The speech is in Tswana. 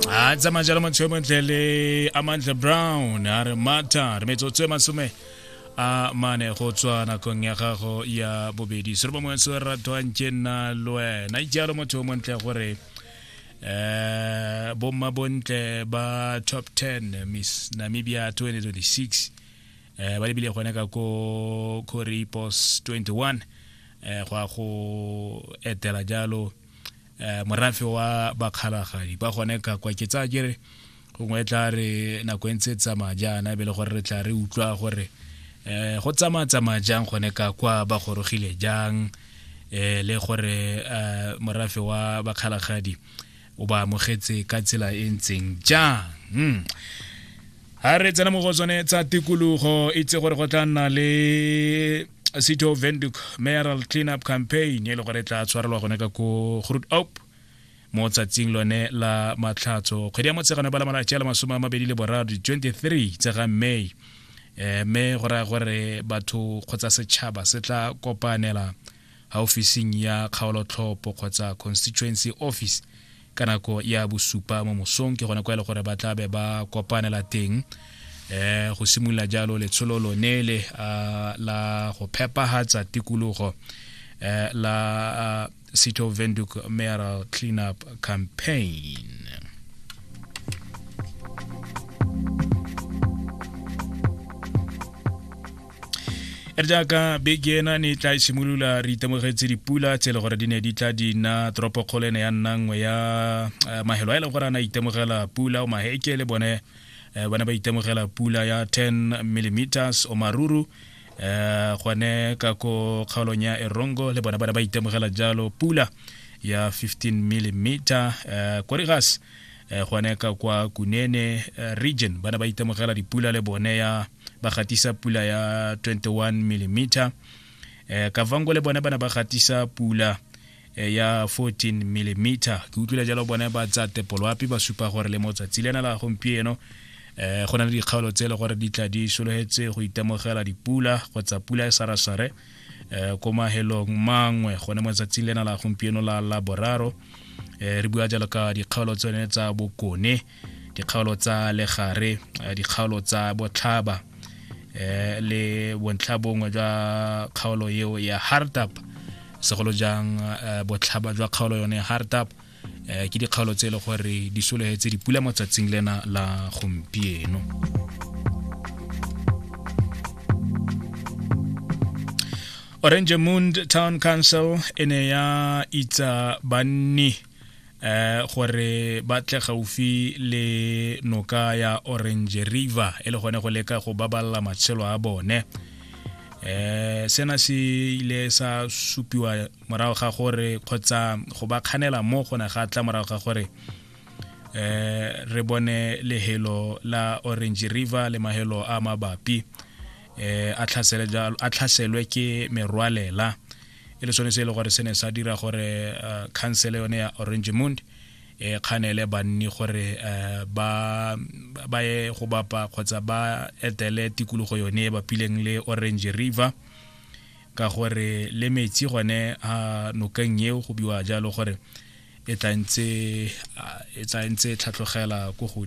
a tsamaya jalo motho yo montle le amantle brown a re mata re metsotso e masome a mane go tswa nakong ya gago ya bobedi sere bangwe se ratwang ke nna le wena jalo motho yo montle gore um bomma bontle ba top 10 miss namibia 2026 um ba lebile gone ka ko coripos 21 um go ya go etela jalo eh, morafe wa bakgalagadi ba gone ka kwa ke tsaya kere gongwe e tla re nako e ntse e tsamaya jaana e be le gore re tla re utlwa gore um go tsamaya tsamaya jang gone ka kwa ba gorogile jang um le gore um morafe wa bakgalagadi o ba amogetse ka tsela e ntseng jang hmm. ha re tsena mo go tsone tsa tikologo itse gore go tla nna le city of venduk mayoral cleanup campaign e le gore e tla tshwarelwa gone ka ko groot op mo tsatsing lone la matlhatso kgwedi ya motshegano ba la malatsi a le masome a mabedi le boraro di-23 tse ga may eh, mme go raya gore batho kgotsa setšhaba se tla kopanela officing ya kgaolotlhopo kgotsa constituency office ka nako ya bosupa mo mosong ke gone kwa e le gore ba tla be ba kopanela teng eh go simolola jalo letsholo lone le ah, la go phepahatsa tikologo eh, la ah, city of venduk mayoral cleanup campaign re jaaka beke ena ne tla simolola re itemogetse dipula tse e le gore di ne di tla di nna toropokgolo ene ya nna nngwe ya eh, mahelo a e leng gore a na itemogela pula o maheke le bone eh, ba ne ba itemogela pula ya 10 millimeters o maruru um gone ka ko kgaolong ya erongo le bone ba ne ba itemogela jalo pula ya 15 millimeter um korigas gone ka kwa kunene region ba ne ba itemogela dipula le bone ya ba gatisa pula ya 21 mm eh kavango le bone ba ne ba gatisa pula eh, ya 14 mm ke utlwile jalo bone ba tsa tepoloapi ba supa gore le motsatsi lena la gompieno eh go na le dikgaolo tse e le gore di tla di sologetse go itemogela dipula kgotsa pula e sarasare eh ko mahelong mangwe gone mo tsatsing lena la gompieno la laboraro eh re bua jalo ka dikgaolo tsone tsa bokone dikgaolo tsa legare eh, dikgaolo tsa botlhaba eh, le bontlha bongwe jwa kgaolo eo ya hardtap segolo jang eh, botlhaba jwa kgaolo yone hardtap ke dikgaolo tse e le gore di sologetse dipula mo tsatsing lena la gompieno orange moon town council e ne ya itsa banni eh gore ba tle gaufi le noka ya orange river e le gone go leka go baballa matshelo a bone eh sena se ile sa supiwa morago ga gore kgotsa go ba kganela mo go ne ga tla morago ga gore eh re bone lehelo la orange river le mahelo a mabapi eh a tlhaselwe ke merwalela e le sone se e le gore se ne sa dira gore uh, council yone ya orange mond e kganele banni gore uh, ba ba ye go bapa kgotsa ba etele tikologo yone e bapileng le orange river ka gore le metsi gone a nokeng eo go biwa jalo gore e tla ntse e tlhatlogela ko